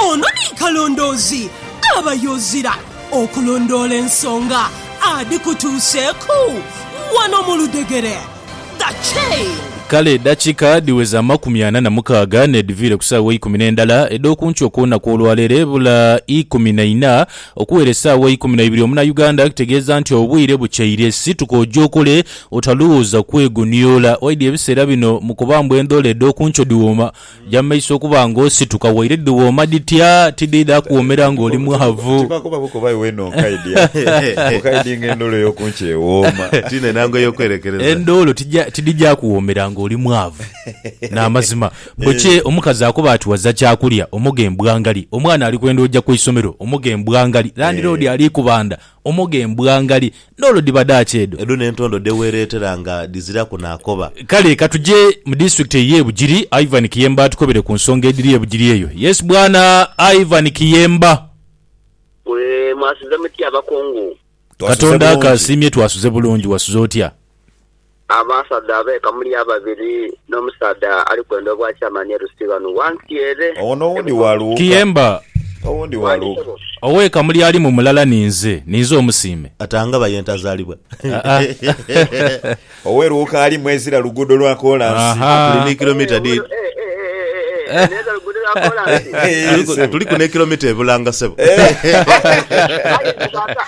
Ono ni kalondoozi aba yozira okulondoola ensonga adhikutuuseeku wano mu ludhegere. The Chain. Kale edakika dhiweza amakumi ana na mukaaga n'edhiviire ku saawa eikumi n'endala edh'okunkyo okw'olunaku olwaleero ebula ikumi na ina okuwera esaawa eikumi na ibiri omuna Uganda kitegeeza nti obwire bukyeire situka oje okole otalowooza kwegonioola waidhi ebiseera bino mu kuba mbu endhola edh'okunkyo dhiwooma Ja mu maiso okuba ng'osituka waire dhiwooma dhitya, tidhiidha kuwoomera ng'oli mwavu. Tibakoba bukoba iwe no nkaidya bukaidi ng'endoolo ey'oku nkyo ewooma. Ti n'enhango ey'okwerekereza. Endoolo tija tidhija kuwoomera ng'oli mwavu. N'amazima. Bukye omukazi akoba ati waza kyakulya, omoga embwa ngali. Omwana ali kwenda oja ku isomero, omoga embwa ngali. Landiroodi ali kubanda, omoga embwa ngali. Ndhoolo dhiba dha ki edho? Edho n'entondo dhe weereetera nga dhiziraku na koba. Kale ka tuje mu disiturikiti ey'e Bugiri. Ivan Kiyemba atukobere ku nsonga edhiri e Bugiri eyo. Yes Bwana Ivan Kiyemba. Mwe mwasuze mutya abakungu? Twasuze Katonda bulungi. akaasiimye twasuze bulungi. Wasuze otya? Abasaadha abeeka muli ababiri n'omusaadha ali kwenda obwakyamani e Rusiga ghano ghansi ere. Owo n'owundi wa Luuka. Kiyemba. Owundi wa Luuka. Oweeka muli alimu mulala ninze. Ninze omusiime. Atangaba ye ntazalibwa. Owe Luuka alimu ezira luguudo lwa kolansi. Tuli ni kilomita dhiri. N'ezira luguudo lwa kolansi. Tuliku n'ekilomita e Bulanga sebo. Aye Luuka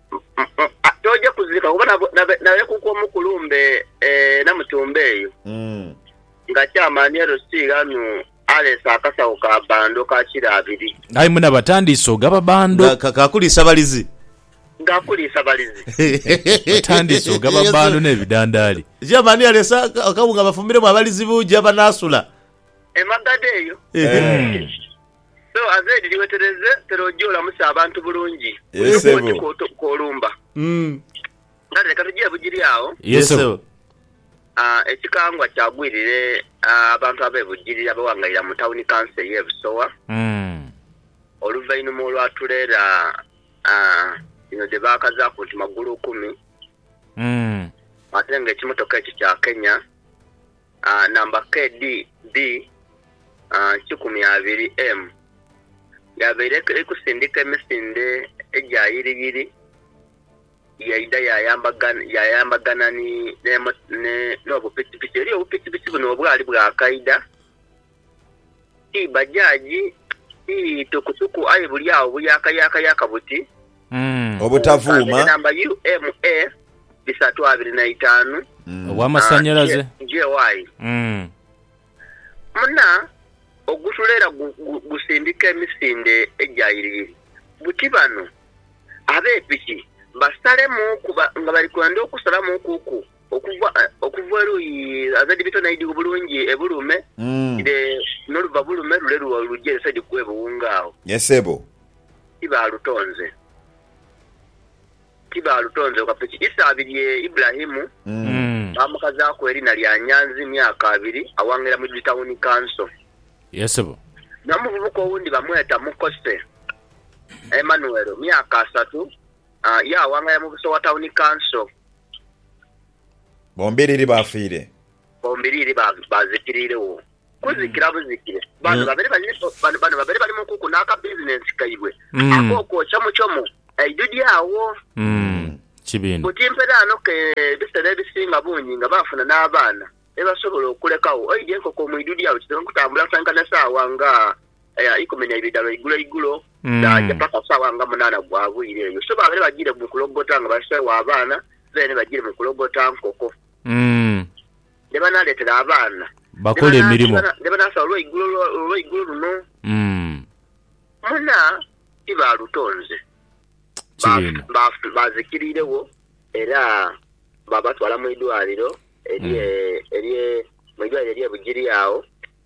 Toja kuzirika kuba nalekwa omu kulumbe e Namutumba eyo nga chairman LC ghanu aleese akasawo ka bando ka kilo abiri. Aye muna batandiise ogaba bando. Nga ka kuliisa balizi. Ga kuliisa balizi. Batandiise ogaba bando ne bidandaali. Chairman aleese akawunga bafumbiremu abalizi buja banasula. Emagadho eyo. So as Ed liwetereze pero oje olamuse abantu bulungi Yes, kuno ssebo. kwoki kwolumba kale leka tugye bugiri agho Yes, ssebo. Ah, ekikangwa kyagwirire ah, abantu abe Bugiri abewangaira mu tawuni kanso eye Busowa oluvainuma olwa tulera ah, dhino dhe baakazaku nti magulu kumi ate nga ekimotoka ekyo kya Kenya. Namba KD B kikumi abiri M Yabaire eikusindika emisinde egya yiriyiri, yaidha yayambagana n'obupikipiki. Eriyo obupikipiki buno obwali bwa kaidha. Ti bajaji, ti tukutuku aye buli agho buyakayakayaka buti. Obutavuuma. Nkanze namba UMA bisatu abiri na itaanu. Ow'amasannyalaze. JY. Muna, ogusula era gusindika emisinde egya yiriyiri. Buti bano ab'epiki basalemuuku nga bali kwenda okusalamuukuku. Okuva okuva eruyi azaidi bito naidi obulungi ebulume ire noluva bulume lule luja ere side kwe buwunga agho. Ye sebo. Tibalutonze tibalutonze wakafa isa abiri e Ibulahimu bamukazaku erina lya Nyanzi myaka abiri awangira mu Tawuni Kanso. Ye sebo. Nomuvubuka owundi bamweta Mukose Emanuero myaka asatu. Yaawangaya mu buso wa tawuni kanso. Bombiriri baafiire. Bombiriri baazikiriiregho kuzikira buzikire. Bano babere bali mu kuku n'akabizinensi kaibwe ak'okwokya muchomo eidhudhu agho. Buti mperaano ke ebiseera ebisinga bungi nga baafuna n'abaana be basobola okulekagho. Oidha enkoko mu idhudhu agho kizibu okutambula asankana esaawa nga Aya ikumi na ibiri dha lwa igulo igulo dhaaja paka saawa nga munaana gwa bwire. Eyo so babaire bagiire mu kulogota nga baseegho abaana, baire ni bagiire mu kulogota nkoko. Dhe banaaleetera abaana dhe banaasaba olwa igulo luno. Muna tibaalutonze. Baazikiriiregho era baabatwala mu idwaliro erye Bugiri agho.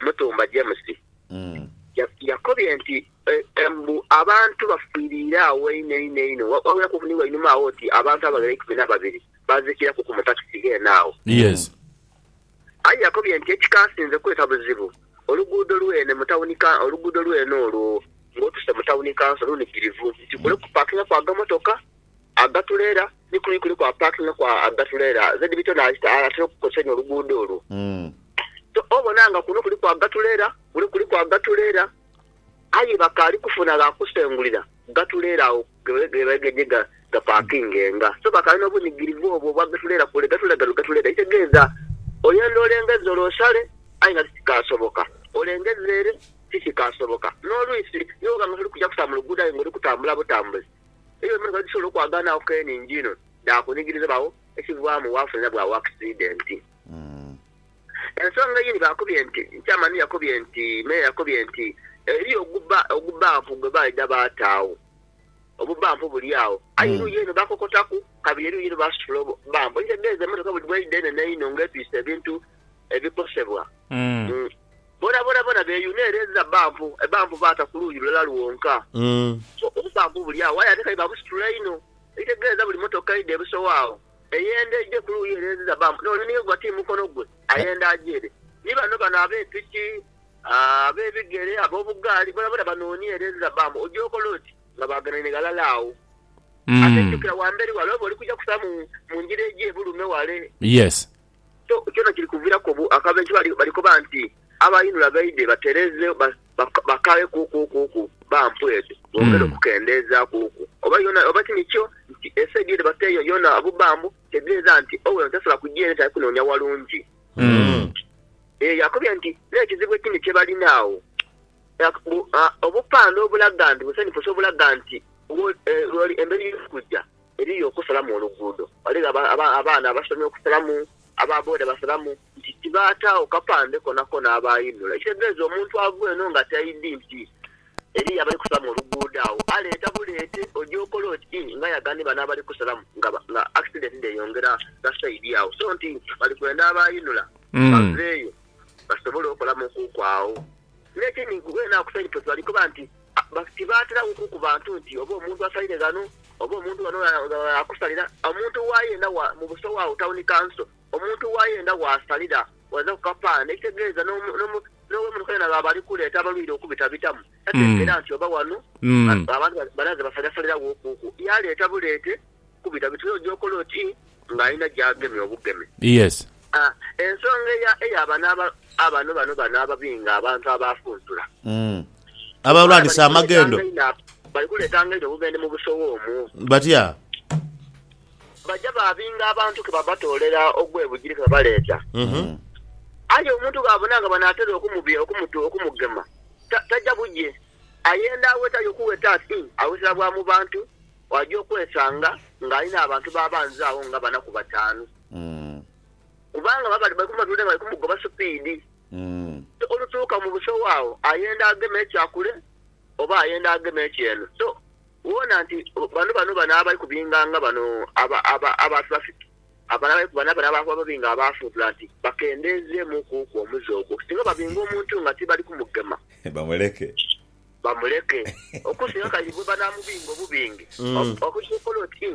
Mutumba James yakobye nti mbu abantu bafiiriire agho einho einho einho, wabairaku ni wainuma agho oti abantu abaghera eikumi na babiri baazikiraku ku mu takisi ghene agho. Aye yakobye nti ekikansinze kweta buzibu oluguudo lwene mu tawuni kanso, oluguudo lwene olwo ng'otuse mu tawuni kanso lunhikirivu nti kule kupaakingaku agamotoka. Agatuleera ni kuli kuliku aparkinga kwa agatuleera ZB to naajita atera okukozesa inho oluguudo olwo. To obona nga kuno kuliku agatuleera, kule kuliku agatuleera aye bakaali kufuna gha kusengulira gatuleera agho ghe baidye gha gapakingenga. So bakaali n'obunigirivu obwo obwa gatuleera kule gatuleera ghano gatuleera. Ekitegeeza oyenda olengezza ole osale aye nga tikikaasoboka, olengezza ere tikikaasoboka. N'olwisi ni bwoba nga toli kugya kusala mu luguudo aye nga oli kutambula butambuzi. Eyo emotoka edhisobola okwagaanagho keeni injino dhaakunigiriza bagho ekivaamu waafuna era bwagho akisidenti. Ensonga eyindi baakobye nti, Chairman yakobye nti, Meeya yakobye nti, eriyo ogubampu gwe baidha baataagho, obubampu buli agho aye eruuyi eno baakokotaku kabiri eruuyi ere baasitula obubampu. Ekitegeeza emotoka buli bweidha enhenhe einho ng'etwise ebintu ebikosebwa bonabona bona beyuna ere enza bbampu ebbampu baata ku luuyi lulala lwonka. So obubbampu buli agho aye ate kale babusitula inho ekitegeeza buli mmotoka eidha ebusowo agho eyenda eije ku luuyi ere enziza bbampu n'ole ni yegwa ti mukono gwe ayenda aje ere. Ni bano bano abe piki, ab'ebigere, ab'obugaali bonabona banoonia ere enziza bbampu. Oja okola oti nga baaganhaine ghalala agho. Ate jjukira ghamberi ghale oba oli kuja kusa mu ngira eija e Bulume ghale. Kyona kiri kuviiraku akabenje kuba bali koba nti abainula baidhe batereezeegho bakaagheku-ku-ku-ku bampu edho bongere okukendeezaaku-ku. Oba oba ti nikyo nti esaidi edho bateeyo yoona bubambu, kitegeeza nti Owino tasobola kuja ere tali kunoonia walungi. Eyo yakobye nti n'ekizibu ekindi kye balina agho obupande obulaga nti busenipuse obulaga nti emberi y'okuja. Eriyo okusalamu oluguudo. Ghaligho abaana abasomye okusalamu, aba boda basalamu nti tibaataagho kapande konakona abaayinula. Ekitegeeza omuntu ava eno nga taidhi nti eriyo abali kusalamu oluguudo agho. Aleeta buleete, oja okola oti ii nga yaga ni bano abali kusalamu nga akisidenti dheyongera gha saidi agho. So nti bali kwenda abaayinula baveeyo basobole okolamukuuku agho. N'ekindi weene agho ku saidi toti bali koba nti Tibaaterawo kuku bantu nti oba omuntu asalire ghano, oba omuntu ghano gh'akusalira. Omuntu waayenda mu busowa agho, tawuni kanso, omuntu waayenda waasalira waza ku kapaana, ekitegeeza n'ow'emotoka yona bw'aba ali kuleeta abalwaire okubitabitamu, tatengera nti oba ghano abantu balaze basaliasaliragho kuku. Yaaleeta buleete Kubita biti oyo gy'okola oti ng'alina gy'agemye obugeme. Yes. A, Ensonga eya, eya bano aba, abano, bano, bano ababinga abantu abaafuntula. Mm. Abalwani Bali saamagendo. kuleetanga inho ab, bali kuleetanga inho obubendhe mu busowa omwo. Batya? Baja baabinga abantu ke babatoolera ogw'ebugiri ke babaleeta. Mhm. Aye omuntu bw'abona nga banaatera okumubi, okumutu, okumugema, ta, taja bugye. Ayenda awetayo kuweta ati, awetera bwa mu bantu, waaja okwesanga ng'alina abantu b'abanza agho nga bana ku bataanu. Kubanga baba bali kumutunda nga bali kumugoba supiidi. So olutuuka mu busowa agho ayenda agema ekya kule oba ayenda agema eky'eno. So woona nti bano bano bano abali kubinganga bano abantu bafiki, bano abali kubano bano abali kubabinga abaafuntula nti bakendeezeemukuuku omuze ogwo. Singa babinga omuntu nga tibali kumugema. Bamuleke. bamuleke, okusinga kali bwe banaamubinga obubinge, okusobola oti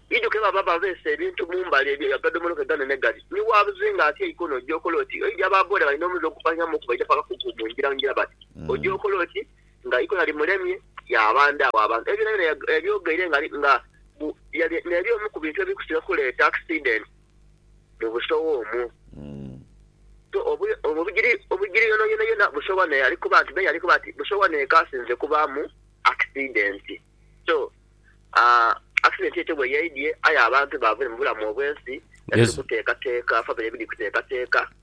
iduke baba babeese ebintu mu mbale ebyo agadomolo ke ganene gali, ni waabuzinga ati eikono oja okola oti? Oija baaboola balina omuze ogufanhanhamu okuba eidhaku akakuku mu ngira ngira bati, Oja okola oti? Nga ikona limulemye, yaabandha agho abantu. Ebyo byonabyona yabyogeire nga n'ebyo omu ku bintu ebiri kusinga okuleeta akisidenti. mu busowa omwo. So obugiri obugiri yonayona yona busowa naye ali kuba nti me yali kuba nti busowa neka asinze kubamu accident so aah accident etyo bweyaidye aye abantu bavire mubulamu obwensi nga tuli kutekateka family biri kutekateka.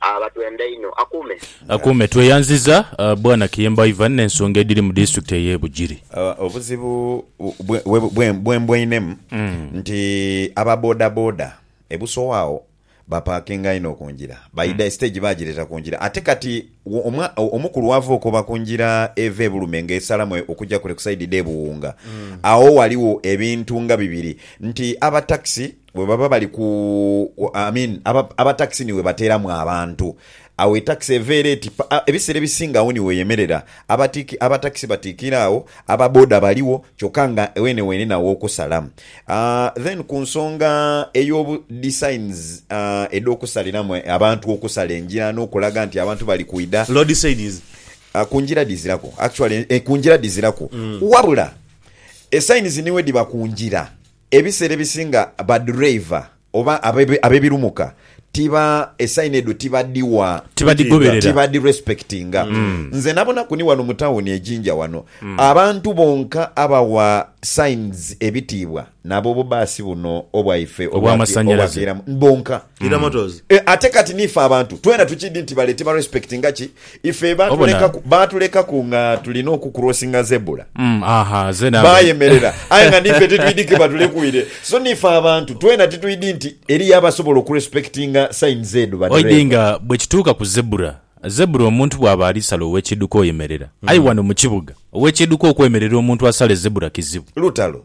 Abatwenda inho akuume. Akuume. Tweyanziza Bwana Kiyemba Ivan n'ensonga edhiri mu disitulikiti ey'e Bugiri. Obuzibu bwe mbweinemu nti aba bodaboda e Busowa agho bapakinga inho ku ngira, baidha esiteegi baagireeta ku ngira ate kati omu ku lwava okoba ku ngira eva e Bulume ng'esalamu okugya kule ku sayidi dhe Buwunga agho ghaligho ebintu nga bibiri nti aba takisi Bwe baba bali ku, I mean, aba, aba takisi ni we bateeramu abantu. Agho etakisi eva era eti, pa, a, ebiseera ebisinga agho ni weyemerera. Abatiiki, aba takisi batiikira agho, aba boda baligho, kyokka nga weene weenena aw'okusala. A, then ku nsonga ey'obu, dhi signs, a, edh'okusaliramu e, abantu okusala engira n'okulaga nti abantu bali kwidha. Road signs. A, ku ngira dhiziraku. Actually, e, ku ngira dhiziraku. Wabula, e signs ni we dhiba ku ngira. Ebiseera ebisinga baduraiva oba ab'ebirumuka tiba, esaini edho tibadhigha, tibadhirespectinga. Nze nabonaku ni wano mu tawuni e Jinja wano, abantu bonka abawa signs ebitiibwa nabo bubaasi buno obwaife obw'akeira bonka. Ate kati niife abantu twena tukiidhi nti bale tibarespectinga ki? Ife baatulekaku baatulekaku nga tulina okukurosinga zebula. Mm, aha, ze nava. Baayemerera, aye nga niife titwidi ki batulekuire. So niife abantu twena titwidi nti eriyo abasobola okurespektinga sayini z'edhu Oidhi badhereeva. nga bwe kituuka ku zebula. Zebula omuntu bw'aba ali sala ow'ekidduka oyemerera. Aye wano mu kibuga, ow'ekidduka okwemerera omuntu asale zebula kizibu. Lutalo.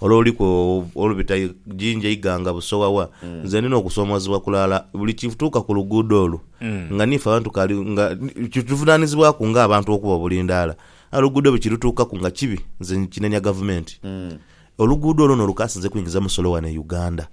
Ole oliku olubita Jinja, Iganga, Busowa wa? Nze ndi n'okusoomoozebwa kulala buli kituuka ku luguudo olwo nga niife abantu kali nga kituvunaanizibwaku ng'abantu okuba obulindaala. Aye oluguudo bwe kirutuukaku nga kibi nze nkinenya Gavumenti. Oluguudo olwo n'olukaasinze kwingiza musolo wano e Uganda.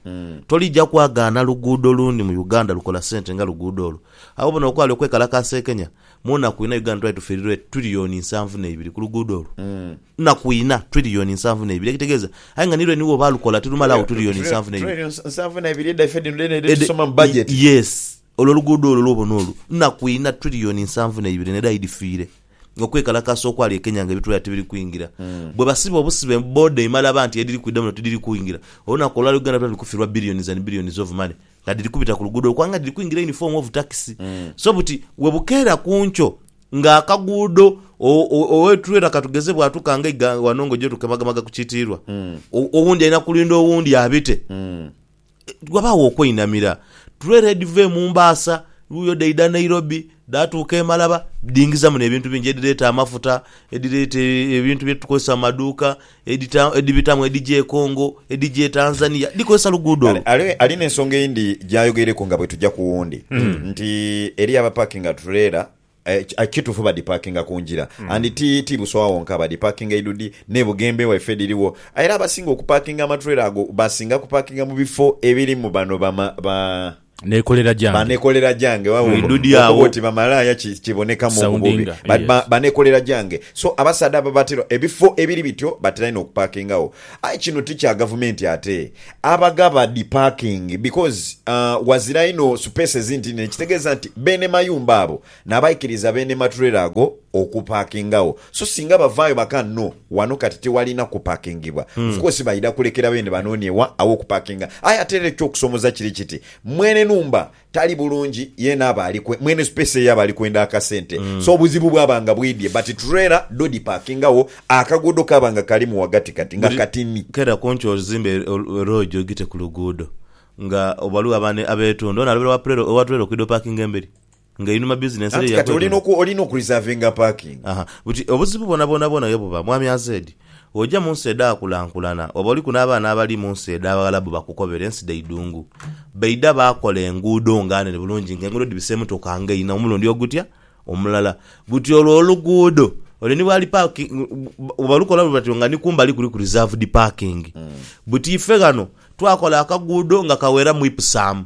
Tolija kwagaana luguudo lundi mu Uganda lukola ssente nga luguudo olwo. Agho bona okwali okwekalakaasa e Kenya, mu naku inha Uganda twali tufiirirwa e tiriliyooni nsanvu n'eibiri ku luguudo olwo. Nnaku ina, twiriyoni nsanvu n'eibiri, ekitegeeza, aye nga ni lwe niwo baalukola, tirumalagho twiriyoni nsanvu n'eibiri. Twiriyoni nsanvu n'eibiri edhaife dhino dheene edhetusoma mu bajeti. Yes. Olwo oluguudo olwo lw'obona olwo, nnaku ina, twiriyoni nsanvu n'eibiri n'edhai dhifiire. Okwekalakaasa okwali e Kenya nga ebitwera tibiri kwingira. Bwe basiba obusibe, booda emala aba nti edhiri kwidha muno tidhiri kwingira. Olunaku olwaleero Uganda twandhi kufirwa billions and billions of money. nga dhiri kubita ku luguudo okwa nga dhiri kwingira yunifoomu ovu takisi. So buti we bukeera ku nkyo nga akaguudo owetulera ka tugeze bwatuuka nga eiga wano ng'oja otugemagemaga ku kitiirwa, owundi alina kulinda owundi abite. Wabaagho okweinamira. Tulera edhiva e Mumbaasa luuyo dhaidha Nairobi, dhaatuuka e Malaba, dhiingizamu n'ebintu bingi edhireeta amafuta, edhireeta ebintu bye tukozesa mu maduuka, edita, edhibitamu edhija e Congo, edhija e Tanzania, dhikozesa luguudo Kale olu. ale ali n'ensonga eyindi gy'ayogeireku nga bwe tuja ku wundi nti eriyo abapakinga tureela eh, ki- ah, kituufu badhipakinga ku ngira and ti ti Busowa wonka badhipakinga Idudi n'e Bugembe waife dhiriwo aye era abasinga okupakinga amaturela ago basinga kupakinga mu bifo ebirimu bano bama ba Nekolera gyange. Ba nekolera gyange. Wawoo. Mwidudi agho. Okuba oti bamalaaya ki, kibonekamu obubobi. Soundinga, Ba, ba, yes. ba nekolera gyange. So, abasaadha abo batera, ebifo ebiri bityo batera inho okupaakingagho. Aye kino ti kya Gavumenti ate. Abagaba dhi paakingi because, uh, ghazira inho supeesi ezinti inene, ekitegeeza nti beene mayumba abo N'abaikiriza beene maturela ago okupakingagho. So singa bavaayo baka, No, wano kati tiwalina kupakingibwa, of course baidha kulekera beene banoonye wa aw'okupakinga. Aye ate era eky'okusoomoza kiri kiti, mwene nhumba tali bulungi, yeena aba ali, mwene space eyo aba ali kwenda akasente. So obuzibu bwaba nga bwidhie, but turela dho dhipakingagho, akaguudo kaaba nga kalimu ghagatikati nga Buli katini. Kera ku nkyo ozimbe loogi ogite ku luguudo nga ghaligho abeetunda. Onaalobera owa turela okwidha opakinga emberi. nga einhuma bizinensi ere Anti kati olina yakwetunda. oku, olina oku reservinga parking. Aha. Buti obuzibu bwonabwonabwona ye buba, Mwami AZ, oja mu nsi edhaakulankulana, oba oliku n'abaana abali mu nsi edh'Abaghalabu bakukobera, ensi dha idhungu. Baidha baakola enguudo nga nene bulungi, nga enguudo dhibisa emotoka nga inha omulundi ogutya omulala. Buti olwo oluguudo, ole ni bwali parki, bwebalukola bwe batyo nga ni kumbali kuliku reserved parking. Buti ife ghano twakola akaguudo nga kaweramu Ipsum.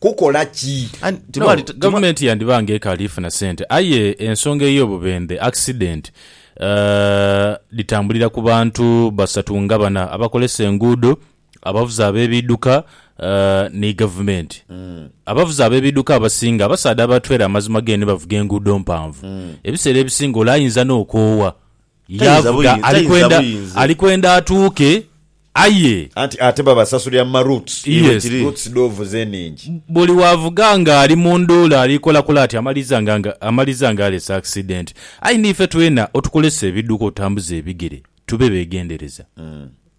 kukola ki? No, gavumenti yandiba nga ekaali funa sente. Aye ensonga ey'obubendhe, accident, dhitambulira ku bantu basatu nga bana, abakolesa enguudo, abavuzi ab'ebiidhuka ni gavumenti. Abavuzi ab'ebiidhuka abasinga abasaadha aba trailer amazima geenhe bavuga enguudo mpanvu. Ebiseera ebisinga ole ayinza n'okoowa. Tainza Yaavuga buyinza- ali tainza kwenda buyinza. ali kwenda atuuke aye Anti ate babasasulira mu ma roots. Iwe Yes. kiri. Roots dhovuze enhingi. buli wavuga nga ali mu nduula ali kolakola ati amaliza nga nga amaliza nga alese accident. Aye niife twena otukolesa ebidduka otutambuza ebigere tube begendereza.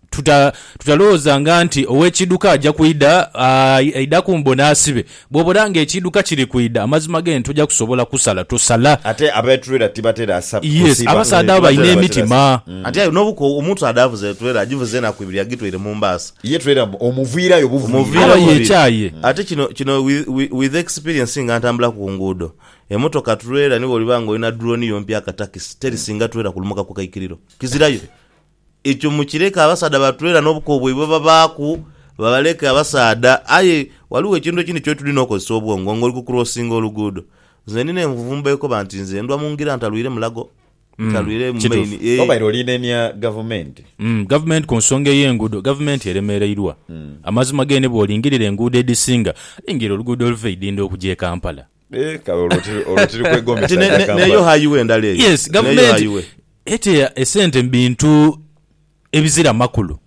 Tuta, tutalowoozanga nti ow'ekiidhuka aja kwidha, aah, aidha kumbona asibe. Bw'obona nga ekiidhuka kiri kwidha, amazima genti toja kusobola kusala, tosala. Ate aba trailer tibatera Yes, kusiba. abasaadha abo balina emitima. Ati aye nobuko omuntu ade avuze trailer ajivuze enaku ibiri agitoire mumbaasa. Ye trailer mbu omuviirayo buviira. Aba yekyaye. Ate kino, kino with, with, with experience nga ntambulaku kunguudo, emotoka trailer ni bwoliba nga olina drone yo mpya akatakisi, terisinga trailer kulumuka kukaikiriro. Kizirayo. Ekyo mukireke abasaadha batweere ghano obuko bwaibwe bwebabaaku, babaleke abasaadha. Aye ghaligho ekintu ekindi ky'otuli n'okozesa obwongo ng'oli ku kurosinga oluguudo. Nze ndina envumbo ekoba nti nze ndhwa mu ngira ntalwire mulago, ntalwire mu maini, Kituufu. eeh. Obaire olinenia Gavumenti? Gavumenti ku nsonga ey'enguudo, Gavumenti eremereirwa. Amazima ge ni bwolingirira enguudo edhisinga, lingirira oluguudo oluva e Idhindho okugya e Kampala. Eh, kale olwo tiri- olwo tiri kwegomesa Kati ne- ne- Kampala. neyo hayiwe ndala eyo. yes Neyo gavumenti hayiwe. eteya esente mu bintu ebizira makulu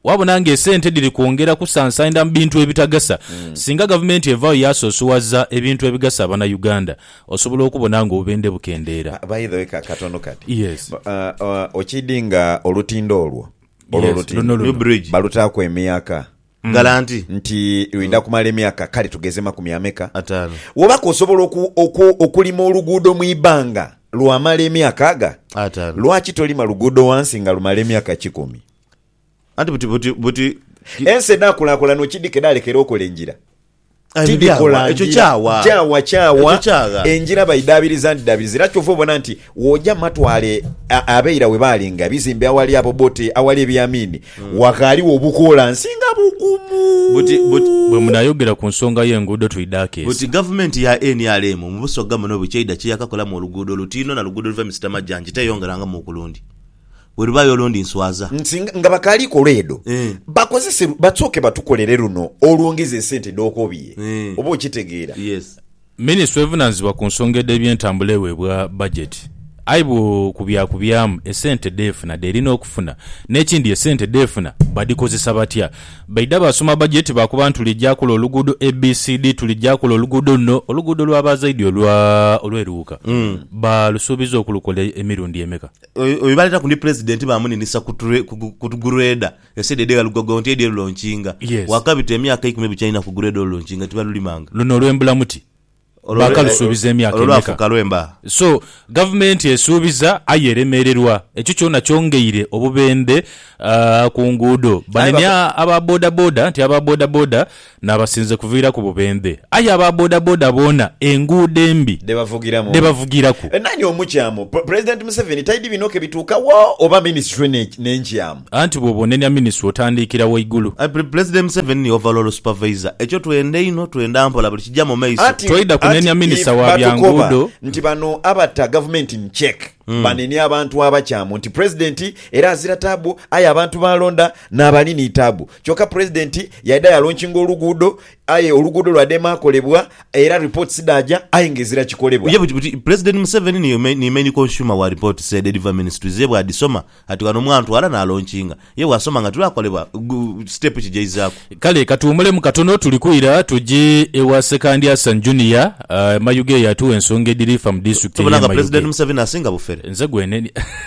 wabona nga esente dhiri kwongera kusansainda mu bintu ebitagasa Hmm. singa gavumenti evayo yasosowaza ebintu ebigasa abanauganda osobola okubona nga obubende bukendeera By the way, ka- katono kati Yes. Ba- ah, ah, okidi nga olutindo olwo olwo Yes, olutindo luno luno. New bridge. balutaaku emyaka Galanti. Nti lwidha kumala emyaka kale tugeze makumi ameka? Ataano. Woba ke osobola oku, oku, okulima oluguudo mu ibanga lwamala emyaka aga, Ataano. lwaki tolima luguudo wansi nga lumala emyaka kikumi? Anti buti, buti, buti. Ensi edhakulakulana okidhika edhalekera okola engira. Tidhikola ngira, kyawa kyawa, engira baidhaabiriza ndidhaabiriza. Era kyova obona nti woja mu matwale abeira we baali nga ebizimbe awali Abobote, awali Ebiamiini, hmm. waghaligho obukolansi nga bugumu. Bwe munayogera ku nsonga y'enguudo twidhaako ezo. Buti gavumenti ya nrm mu Busoga muno biki eidha kiyakakolamu oluguudo olutiino na luguudo oluva e Misita Majanji teyongerangamu ku lundi. Bwe luba yolo ndi nswaza. Nti nga bakaali kola edho, bakozese, basooke batukolere luno olwongeza esente dh'okobye. Oba okitegeera? Yes. Minisitule evunaanyizibwa ku nsonga edh'ebyentambula eweebwa bajeti. Aye bwo ku bya kubyaamu, esente dh'efuna dh'erina okufuna. N'ekindi esente dh'efuna badhikozesa batya? Baidha baasoma bajeti baakoba nti tuli gya kola oluguudo ABCD, tuli gya kola oluguudo luno. Oluguudo lwa Baazaidi olwa olw'e Luuka baalusuubiza okulukola emirundi emeka? Oyo baleeta ku ndi Pulezidenti baamuninisa ku gureeda ensi edho edhegha lugogo nti edhie lulonkinga. Waakabita emyaka eikumi bukyalina ku gureeda olulonkinga tibalulimanga. Luno olw'embula muti baakalusuubiza emyaka emeka? Olwo lwafuuka lwemba. So, Gavumenti esuubiza aye eremererwa. Ekyo kyona kyongeire obubendhe ku nguudo. Banenya aba bodaboda nti aba bodaboda N'abasinze kuviiraku bubendhe. Aye aba bodaboda boona enguudo embi Dhebavugiramu. dhebavugiraku. Nani omukyamu? President Museveni taidi bino ke bituuka wo oba ministry ne n'enkyamu? Anti bwoba onenya ministry otandiikira waigulu. President Museveni ni overall supervisor. Ekyo twenda einho, twenda mpola buli kija mu maiso. Anti Twaidha kunenya anti minister if wa bya batukoba nguudo. nti bano abata gavumenti in check banenia abantu abakyamu nti president era azira taabu aye abantu b'alonda n'abali ni taabu. Kyoka Pulezidenti yaidha yalonkinga oluguudo aye oluguudo lwadema kolebwa era reports dhaaja aye nga ezira kikolebwa. Ye buti Pulezidenti Museveni ni Main Consumer wa reports said Edva Ministries ye bwadhisoma ati ghano mwantwala nalonkinga ye bwasoma nga tilwakolebwa step ki gyaizaaku. Kale katuwumulemu katono tuli kwira tuje ewa Ssekandi Hassan Junior e Mayuge eyo atuwe ensonga edhiri fa mu district eye Mayuge. Tubona nga Pulezidenti Museveni asinga bufere. Nze gweneni.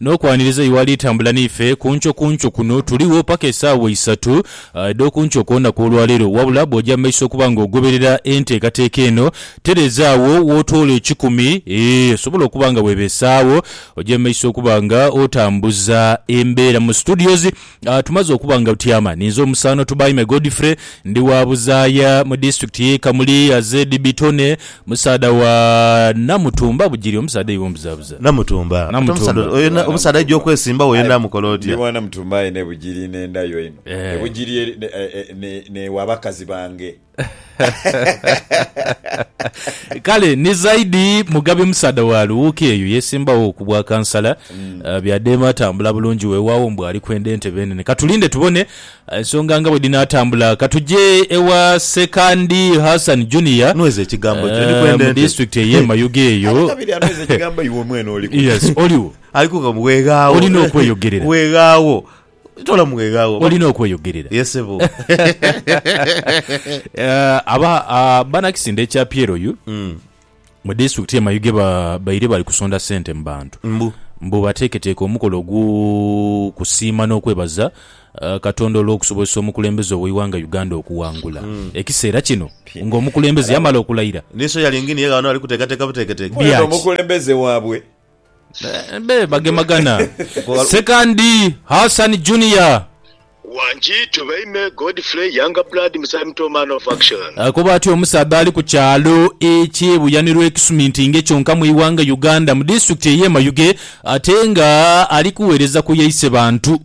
N'okwaniriza oyo ali tambula n'ife ku nkyo ku nkyo kuno, tuligho paka esaawa isatu edh'oku nkyo kwona kw'olwaleero. Wabula bw'oja mu maiso okuba nga ogoberera enteekateeka eno, tereeza agho w'otoola ekikumi, eeh, osobola okuba nga weebeesaagho, oje mu maiso okuba nga otambuza embeera mu studios. Nga tumaze okuba nga butyama, ninze omusaano Tubaime Godfrey, ndi wa Buzaaya mu Disitulikiti y'e Kamuli, ZB Tony, musaadha wa Namutumba Bugiri, omusaadha aidha omubuzaabuza. Namutumba. Ate omusaadha Namutumba. oyo, omusaadha aidha okwesimbawo yenha amukola Ndi otya? wa Namutumba aye n'e Bugiri n'endhayo eno. E Bugiri eri n'ew'abakazi bange. Kale ni zaidi Mugabi musaadha wa Luwuuki eyo yeesimbagho ku bwa kansala. Bya Deema atambula bulungi weewaawo mbu ali kwenda entebe enene. Ka tulinde tubone ensonga nga bwe dhinaatambula. Ka tuje ewa Sekandi Hassan Junior Nweza ekigambo kyo. Ndi kwenda mu ente. disitulikiti ey'e Mayuge eyo. Ate kabiri anweza ekigambo iwe mwene oliku. Yes, oliwo. Aliku nga weeghaawo. Olina okweyogerera. Weeghaawo. Tola mwegha wo. Olina okweyogerera. Ye sebo. Eh, aba ah, banakisinde ekya Pyeroyu mu disitulikiti ye Mayuge ba, baire bali kusonda sente mu bantu Mbu. mbu bateeketeeke omukolo ogw'okusiima n'okwebaza eh, Katonda olw'okusobozesa omukulembeze ow'eighanga Uganda okuwangula ekiseera kino ng'omukulembeze yamala okulayira. Ni soya lyengini ye ghano ali kuteekateeka buteeketeeke. Bya Ono ki? omukulembeze waabwe Be bagemagana. Sekandi Hassan Junior. Wangi to baime Godfrey Younger Blood Musayi Muto Man of Action. Akoba ati omusaadha ali ku kyalo ekye Buyanirwa ekisumintinge kyonka mu ighanga Uganda mu disitulikiti eye Mayuge ate nga ali kuwereza ku yaise bantu.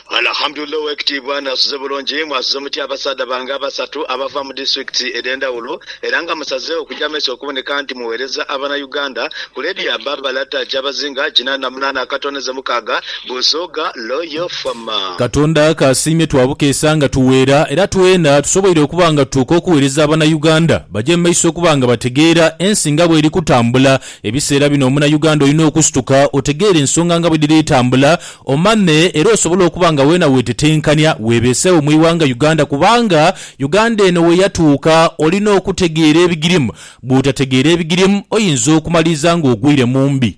Alhamdulillah owekitiibwa nasuze bulungi, mwasuze mutya abasaadha bange abasatu abava mu district edhendhawulo era nga musazeewo kuja maiso okuboneka nti muwereza abana Uganda ku ledia Barbara Takyabazinga Ginana namunana Akatoneze Mukaaga Busoga Loyal Farmer. Katonda kasiimye twabukeesa nga tuweera era tweena tusoboire okuba nga tutuuka okuwereza abana Uganda baje mu maiso okuba nga bategeera ensi nga bweri kutambula ebiseera bino omuna Uganda olina okusituka otegeere ensonga nga bwedhiri etambula Omame era osobola okuba nga weena weetetenkanya weebeesewo mu ighanga Uganda kubanga Uganda eno we yatuuka olina okutegeera ebigirimu. Bw'otategeera ebigirimu oyinza okumaliriza ng'ogwire mu mbi.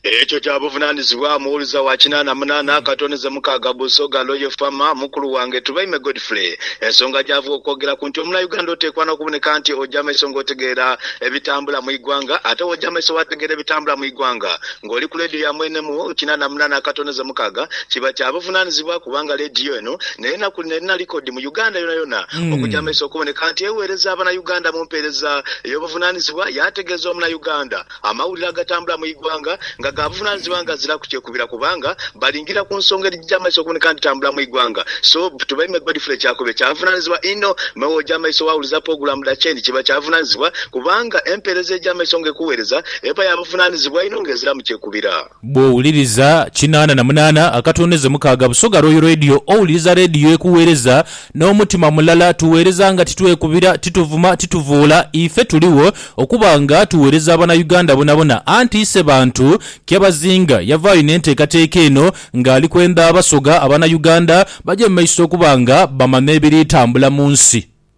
Ekyo kya buvunaanyizibwa. Muwuliza wa kinaana munaana akatone ze mukaaga Busoga Loye Fama, Mukulu wange Tubaime Godfrey, ensonga gy'ava okwogeraku nti omunauganda oteekwa n'okuboneka nti oja maiso ng'otegeera ebitambula mu igwanga. Ate w'oja maiso waategeera ebitambula mu igwanga, Ng'oli ku leediyo ya mwene mu kinana munana akatoneza mukaaga, kiba kya buvunanizibwa kubanga leediyo eno n'enaku dhino erina likodi mu Uganda yonayona okugya amaiso okuboneka nti eweereza abanauganda mu mpeereza ey'obuvunanizibwa yaategeeza omunauganda amawulire agatambula mu igwanga nga ga buvunanizibwa nga ziraku kyekubira kubanga balingira ku nsonga edhigya amaiso okuboneka nti tambula mu igwanga so Tubeime Godfrey Kyakube kya buvunanizibwa inho me wogya amaiso wawuliza pogulamu dha Chain kiba kya buvunanizibwa kubanga empeereza egya amaiso nga ekuweereza Empaya amuvunaanizibwa inho nga eziramu kyekubira. Bw'owuliriza kinaana na munaana akatondeze mukaaga Busoga Royal Radio owuliriza leediyo ekuweereza n'omutima mulala. Tuweereza nga titwekubira, tituvuma, tituvoola. Ife tuligho okuba nga tuweereza Abanauganda bonabona. Anti Isebantu Kyabazinga yavaayo n'enteekateeka eno ng'ali kwenda Abasoga, Abanauganda, baje mu maiso okuba nga bamanya ebiri tambula mu nsi.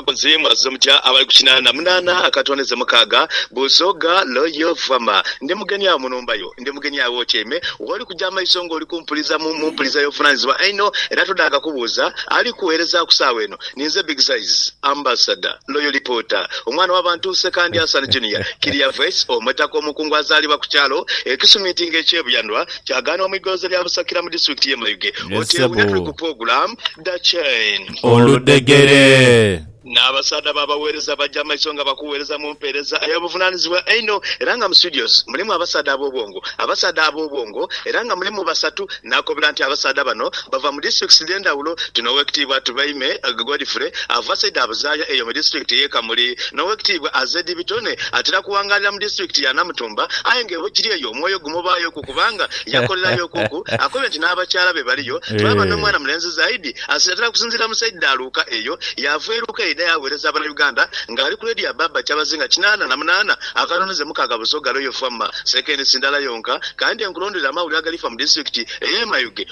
Mbuzi mwa zo mutya abali ku kinaana munaana aka tone ze mukaaga? Busoga loyo vama. Ndi mugeni agho mu nhumba yo. Ndi mugeni agho w'otyaime. W'oli kuja amaiso ng'oli kumpuliza mu, mu mpuliza y'ovunaanyizibwa einho, era todhaaka kubuuza. Ali kugheereza ku saagha eno ninze Big Size, Ambassador, Loyo Lipoota, omwana w'abantu Ssekandi Hassan Junior, Kiria Voice, omutaka omukungu azaalibwa ku kyalo e Kisumintinga eky'e Buyanwa ky'agaanibwa mu igoloza lya Busakira mu disitulikiti y'e Mayuge. Yes Oteewunya, ssebo. tuli ku pulogulaamu Dha Chain. oludhegere. N'abasaadha b'abagheereza baja mu maiso nga bakugheereza mu mpeereza ey'obuvunaanizibwa einho, era nga mu studios mulimu abasaadha ab'obwongo. Abasaadha ab'obwongo era nga mulimu basatu, naakobera nti abasaadha bano bava mu districts edh'endhawulo. Tuna Owekitiibwa Tubeime Godfrey ava saidi Abuzaaya eyo mu district y'e Kamuli, n'Owekitiibwa Azedi Bitone atera kuwangaalira mu district ya Namutumba aye nga bwekiri eyo omwoyo gumubaayoku kubanga yakolerayoku ku. Akobye nti n'abakyala be baliyo, twaba n'omwana mulenzi Zaidi, Asinatira kusinziira mu saidi dha Luuka eyo yaava e Luuka yaidha yaaweereza abana Uganda nga ali ku leediyo abbaabba kyabazinga kinaana na munaana akanonheze mukaaga Busoga Royal Fama sekeendisi ndala yonka kandi enkulondhole amawulire agalifa mu disitulikiti ey'e Mayuge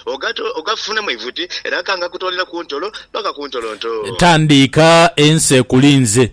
ogafune mu ivuti era ka ngakutoolera ku ntolo paka ku ntolonto. Tandiika ensi ekulinze.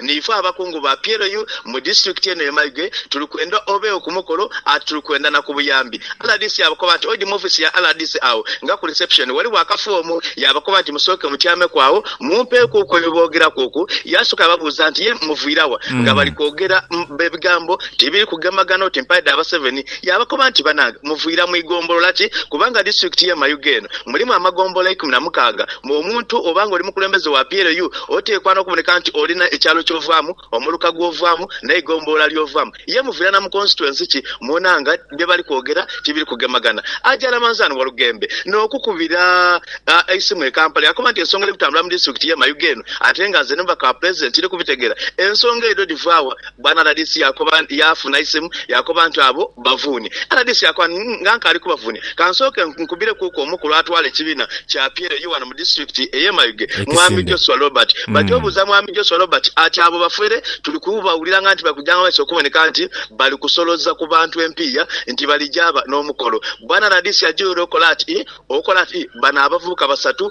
Niife abakungu ba PLU mu disitulikiti eno ye Mayuge tuli kwenda obeegho ku mukolo ati tuli kwenda na ku buyambi. Rdc yaabakoba nti oidhi mu ofiisi ya rdc agho nga ku reception ghaligho akafoomu. Yaabakoba nti musooke mutyameku agho mumpeekuuku ebyo bye boogeraku oku. Yaasooka yaababuuza nti ye muviira wa? Nga bali kwogera ebigambo ti biri kugemagana oti mpale dha Baseveni. Yaabakoba nti banange muviira mu igombolola ki? Kubanga disitulikiti ye Mayuge eno mulimu amagombolola eikumi na mukaaga. Ng'omuntu oba ng'oli mukulembeze wa PLU, oteekwa n'okuboneka nti olina ekyalo ky'ovaamu, omuluka gw'ovaamu n'eigombolola ly'ovaamu. Ye muvira na mu konsituensi ki mwona nga bye bali kwogera tibiri kugemagana? Aja Ramanzan Walugembe n'okukubira eisimu e Kampala yakoba nti ensonga eri kutambula mu disitulikiti y'e Mayuge eno ate nga nze n'omubaka wa Pulezidenti tiri kubitegeera. Ensonga edho dhivaawa? Bwana rdc yakoba nti yaafuna eisimu yakoba nti abo bavuuni. Rdc yakoba nti nga nkaali kubavuunia, kansooke nkubireku ku omukulu atwala ekibiina kya Apyero ye ghano mu disitulikiti ey'e Mayuge, Mwami Joshua Robert. Bati obuuza Mwami Joshua Robert ati abo bafere tuli kubawulira nga nti bakujanga mu maiso okuboneka nti bali kusoloza ku bantu empiiya nti bali gyaaba n'omukolo. Bwana rdc ajighule okola ati okola ati bano abavubuka basatu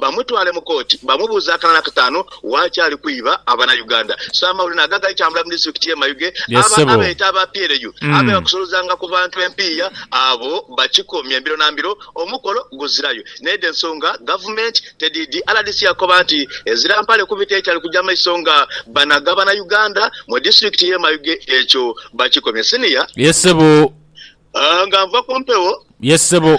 bamutwale mu kooti bamubuuze akalala kataanu waakyali kwiba Abanauganda. Ssaamawulire nago agali tambula mu disitulikiti y'e Mayuge Yes abo ssebo. abeeta aba PLU abeegha Mm. kusolozanga ku bantu empiiya abo bakikomye mbiro na mbiro omukolo guzirayo. N'edho ensonga Gavumenti tedhiidhi. Rdc akoba nti ezira mpale kubita etali kugya maiso nga banaga Banauganda mu disitulikiti y'e Mayuge ekyo bakikomye. Senior. Yes ssebo. Nga nva ku mpewo. Yes ssebo.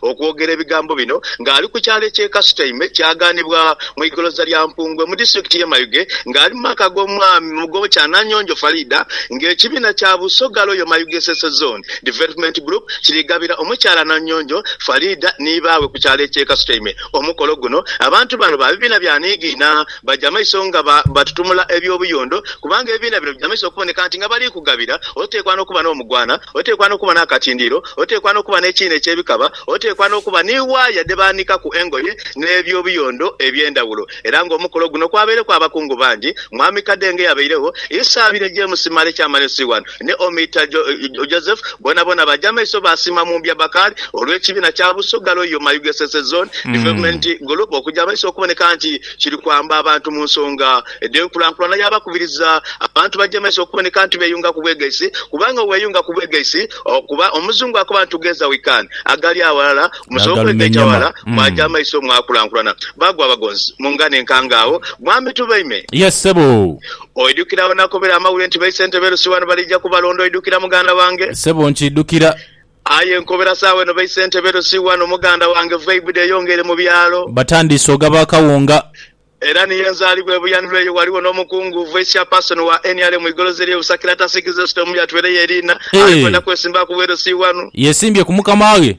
Okwogera ebigambo bino ng'ali ku kyalo eky'e Kasutaime kyagaanibwa mu igoloza lya Mpungwe mu disitulikiti y'e Mayuge ng'ali mu maka g'omwami Mugobo Kyananyonjo Faridah ng'ekibiina kya Busoga Royal Mayuge Ssese Zone Development Group kiri gabira omukyala Nanyonjo Faridah ni baawe ku kyalo eky'e Kasutaime omukolo guno. Abantu bano ba bibiina bya niigiina. baja maiso nga batutumula eby'obuyondo, kubanga ebibiina bino bija maiso okuboneka nti nga bali kugabira, oteekwa n'okuba n'omugwana, oteekwa n'okuba n'akatindiiro, oteekwa n'okuba n'ekiina eky'ebikaba, oteekwa n'okuba ni waaya dhe baanikaku engoye, n'eby'obuyondo eby'endhawulo. Era ng'omukolo guno kwabaireku abakungu bangi, Mwami Kadenge yabairegho, Isa abire James Male Kyamani Siwan, ne omiita Joseph boonaboona baja maiso baasiima mu mbya Bakali olw'ekibiina kya Busoga Royal Mayu Gesese Zone Development Group okuja maiso okuboneka nti kiri kwamba abantu mu nsonga edh'enkulankulana yaabakubiriza abantu baje maiso okuboneka nti beeyunga ku bwegaisi kubanga weeyunga ku bwegaisi okuba Omuzungu akoba nti together we can agali awalala musobola okwegaita walala mwaja maiso mwakulankulana Baagwa abagonzi mu ngano enkangaawo Mwami Tubaime. Yes ssebo. Oidhukira we nakobera amawulire nti baisentebe lusi wano baliija kubalonda? Oidhukira muganda wange? Sebo nkiidhukira. Aye nkobera sawa eno baisentebe lusi wano muganda wange. Vibe dheyongeire mu byalo. Batandiise ogaba akawunga. Era ni ye nzaalibwa e Buyaniro eyo. Waliwo n'omukungu, Vice Chairperson, wa nrm Igolozi eri e Busakira atasiikiza esute mu myatwire ye Eriina. Ali kwenda kwesimbaku bwerusi wano. Yesimbye ku mukama ghe.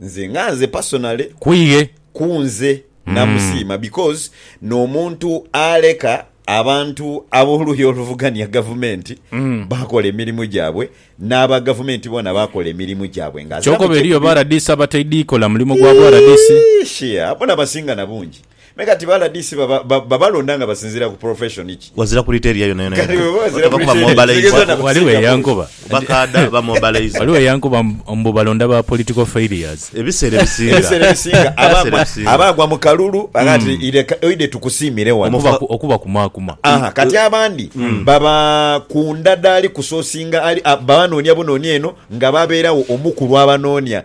Nze nga nze personally Kwiye. kunze namusiima because nomuntu aleka abantu aboluuyi oluvugania gavumenti bakola emirimu gyabwe naba gavumenti bona bakola emirimu gyabwe nga Kyoka aziramu oba eriyo ba kyekumira. rdc abataidhi kola mulimu gwabwe rdc. Iish, yeah, bona basinga nabungi. Me kati ba rdc baba ba- babalonda nga basinziira ku profession ki? Wazira kulita eriya yonayona Kati yadde. bw'oba wazira Bakuba kulita eriya, mobilized. kitegeza na- Waliwo eyankoba Bakaada ba mobilized. waliwo eyankoba mbu- mbu balonda ba political failures. Ebiseera ebisinga. Ebiseera ebisinga aba Ebiseera agwa- ebisinga. aba agwa mu kalulu aga nti "Ireka- oide tukusiimire wano. Okuba ku- okuba kumaakuma. Aha, kati abandi baba ku ndadaali kusosinga ali a- babanoonia bunoonia eno nga babeerawo omu ku lwabanoonia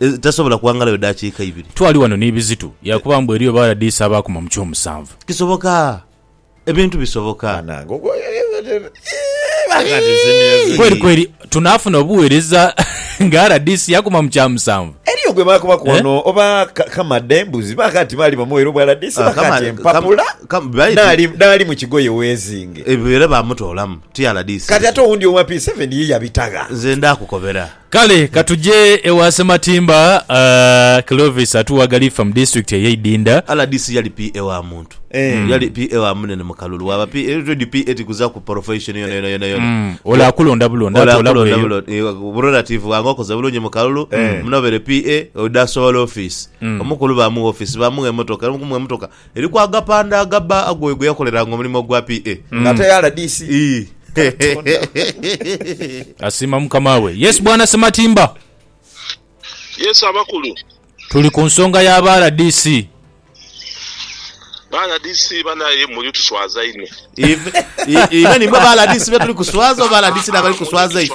etasobola kughangalayo daakiika ibiri. Twali ghano ni Bizitu yaakoba mbu eriyo Baradisi abaakoma mu ky'omusanvu. Kisoboka! Ebintu bisoboka! Kweri kweri tunaafuna obuweereza nga Radisi yaakoma mu kya musanvu? Eriyo gwe baakobaku ghano oba Kamadha embuzi baakaati baali bamuweire obwa Radisi baakaati empapula dhaali mu kigoye weezinge. Ebyo era baamutoolamu ti Radisi. Kati ate owundi owa P7 ye yabita gha? Nze ndaakukobera. Kale ka tuje ewa Sematimba. Clovis Atuwa Galifa mu Disitulikiti ey'e Idinda. Rdc yali PA wa muntu. Yali PA wa munene mu kalulu. Waaba PA, already PA tikuzaku profession yona yona yona yona. Ole akulonda bulonda Ole atoolaku akulonda eyo. bulonda eyo. Bu relative bwange okoze bulungi mu kalulu, munoobeere PA, ode asobola office. Omukulu baamugha office, baamugha emotoka, era mu kumugha emotoka, Eri ku agapande agabba ag'oyo gwe yakoleranga omulimo ogwa PA. Nga ate ya rdc. Ii. Katonda. Asiima mukama we. Yes bwana Sematimba. Yes abakulu. Tuli ku nsonga ya ba rdc. Ba rdc banaye muli tuswaza inho. Even imwe ba rdc betuli kuswaza oba ba rdc nabali kuswaza inho?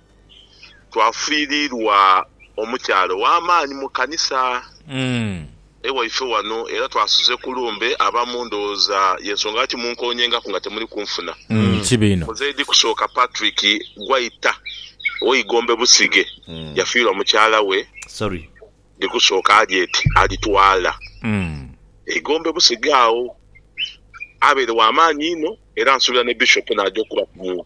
twafiirirwa omukyala ow'amaani mu kanisa ewaife wano era twasuze ku lumbe. Abamu ndowooza y'ensonga lwaki munkoonyengaku nga temuli kunfuna. Muzeedi Kusooka Patrick Gwaita ow'e Igombe Busige yafiirwa mukyala we Ndikusooka Harriet Alitwala. E Igombe Busige agho abaire wa maani inho era nsuubira ni Bishop n'aja okubaku mu.